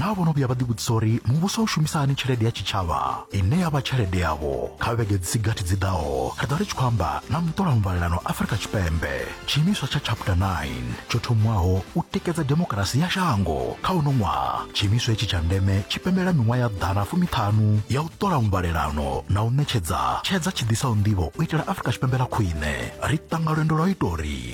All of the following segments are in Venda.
naa vho no vhuya vha ḓivhudzisa uri muvhuso u shumisa hani tshelede ya tshitshavha ine ya vha tshelede yavho kha vhege dzi si gathi dzi ḓaho ri ḓo ri tshi khou amba na muṱolamuvhalelano afurika tshipembe tshiimiswa tsha chapter 9 tsho thomiwaho u tikedza demokarasi ya shango kha uno ṅwaha tshiimiswa hetshi tsha ndeme tshi pembela miṅwaha ya ḓana fumiṱhanu ya u ṱola muvhalelano na u ṋetshedza tshedza tshi ḓisaho nḓivho u itela afurika tshipembe ḽa khwine ri ṱanga lwendo lwa u ita uri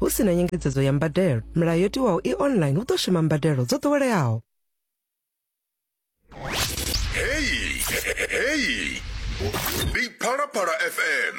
hu si na nyengedzedzo ya mbadelo milayo yo tiwaho i online hu ḓo shuma mbadelo dzo ḓoweleaho heyi heyi ndi phalaphala fm